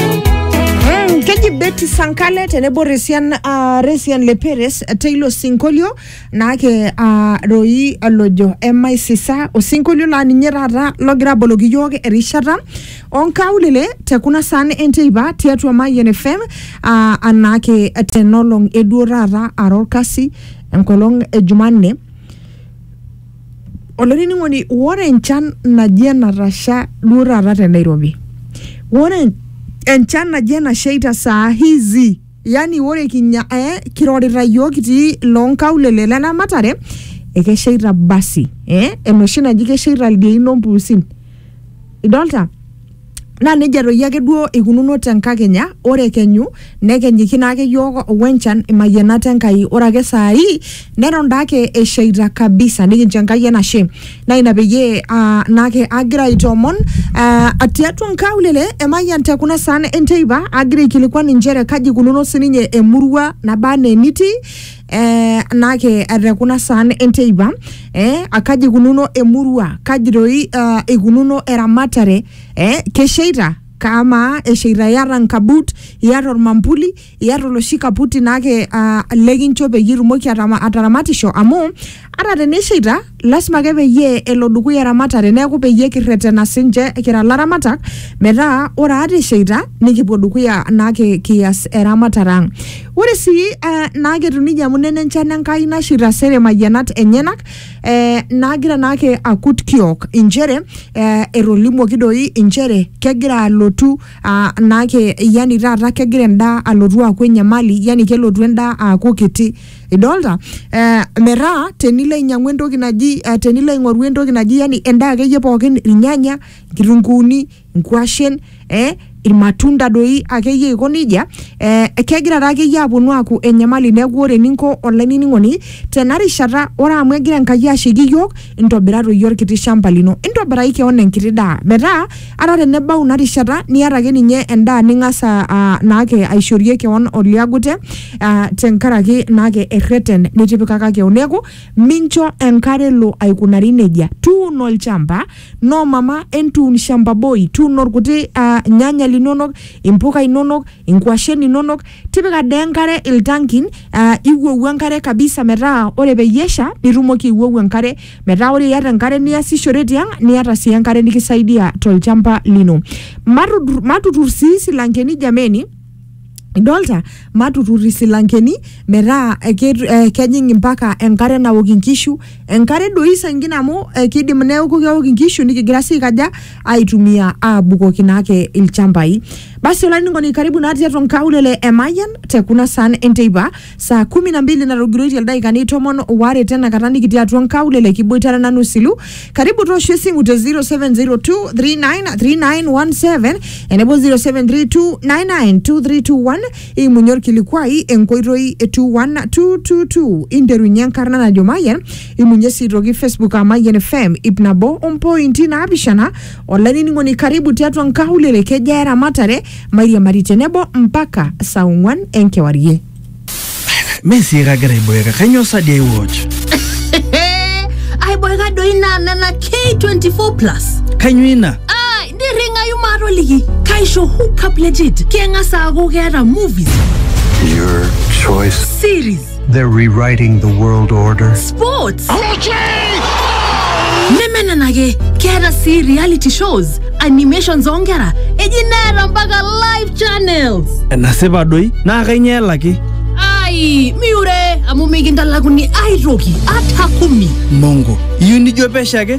Mm, keji Betty Sankale tenebo Resian, uh, Resian Leperes teilo sinkolio naake uh, roi olojo emaisisa osinkolio laa ninye taata logira aboloki iyiook erishata onkaulele te kuna saan enteipa tiatua Mayian FM uh, anaake tenolong eduo taata ara orkasi enkolong e Jumanne Olainining'oni, ore enchan naji enatasha duo taata te Nairobi, ore enchan naji enasheita saa hizi yani ore kinya eh, kirorita yiok kitii loonkaulele le Namatare, ekesheita basi eh, enoshi naji kesheita ildiain ompuusin. Idolta? Naa nejia doi ake duo eikununo te nkakenya, ore kenyu nekenyiki naake iyiook o enchan imayianat Enkai. Ore ake saa hii neton daake eshaita kabisa nikincho Enkai enashe. Naa ina peyie aa naake agira aitoomon aa tiatua nkaulele e Mayian te kuna saan e nteipa agira aikilikuan inchere kaji eikununo sininye emurua naba enaa enitii eh, naake te kuna saan enteipa eh, akaji ikununo emurua kaji doi uh, ikununo eramatare eh, kesheita kamaa esheita iyata nkabut iyata ormambuli iyata oloshi kaputi naake uh, lekincho peyie itumoki atama- ataramatisho amu Ata teneisheita, lasima ake peyie elo dukuya eramatare neeku peyie kirretena sinche kira laramatak metaa ore ata esheita nikipuo dukuya naake kias eramatare ang'. Ore sii eh, naake etiu neija amu nena enchan Enkai nasheita sere mayianat enyenak eh, naagira naake akut kiok inchere eh, etolimuoki doi inchere kegira alotu ah, naake yani taata kegira endaa alotu aaku enyamali yani kelotu endaa aaku kiti idolta eh, metaa tenilo ainyiang'u entoki naji eh, tenilo aing'oru entoki naji yani endaa akeyie pookin irnyanya nkitunkuuni nkuashen eh, irmatunda doi akeyie aiko nejia eh, kegira taa akeyie aponu aaku enyamali neeku ore eninko olainining'oni tena rishata ore amu egira enkai ashaiki iyiook intobira toi orkiti shamba lino intobiraki keon enkiti daa metaa ata tenebau ina rishata niata ake ninye endaa ning'as a- a- naake aishorie keon oliagute ah, tenkaraki naake erreten nitipikaka keon neeku mincho enkare elo aikunari nejia tuuno olchamba no mama entuun shamba boy tuuno orkuti ah, nyanya linonok impuka inonok inkuashen inonok tipika dee enkare iltankin uh, iwuowu enkare kabisa metaa ore peyie esha nitumoki iwuowu enkare metaa ore iyata enkare niasishore tiang niata sii enkare nikisaidia tolchamba lino matutur, matutur sii silankeni jameni idolta matutur isilankeni metaa eh, kejing impaka enkare nawok inkishu enkare doi saingine amu eh, kidim neeku keok inkishu nikigira sii aikaja aitumia abukoki naake ilchambai basi olainining'oni karibu naa tiatua nkaulele e Mayian te kuna saan enteipa saa kumi na mbili natogiroitie ildaikani tomon waare tenakata nikitii atua nkaulele kiboitare nanu silu karibu toosho esimu te 0702393917 enebo 0732992321 Imunye olkilikuai enkoitoi e 21222 interunye enkarna najo Mayian, imunye sii aitoki Facebook aa Mayian FM ip nabo ompointi naapishana. Olainining'oni karibu tiatua nkaulele kejaa eramatare mairiamari tenebo mpaka saa ong'uan enkewarie. Mee sii kagira aiboeka, kainyoo sa dii aiwatch? aiboeka doi naa nena K24 plus Kainyoo ina? nirringayu maatoliki kaisho hookup legit keng'as aaku keeta movies Your choice. series They're rewriting the world order. sports neme nena ake keeta sii reality shows animations oonkera eji neeta mpaka live channels enasipa doi naa kainyoo elaki ai miure amu mikintalakuni aitoki ata kumi mongo iyieu nijo pesho ake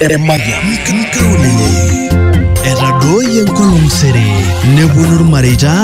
Emayian. Nkaulele. Etadooyie enkolong sere. Neponu irmareita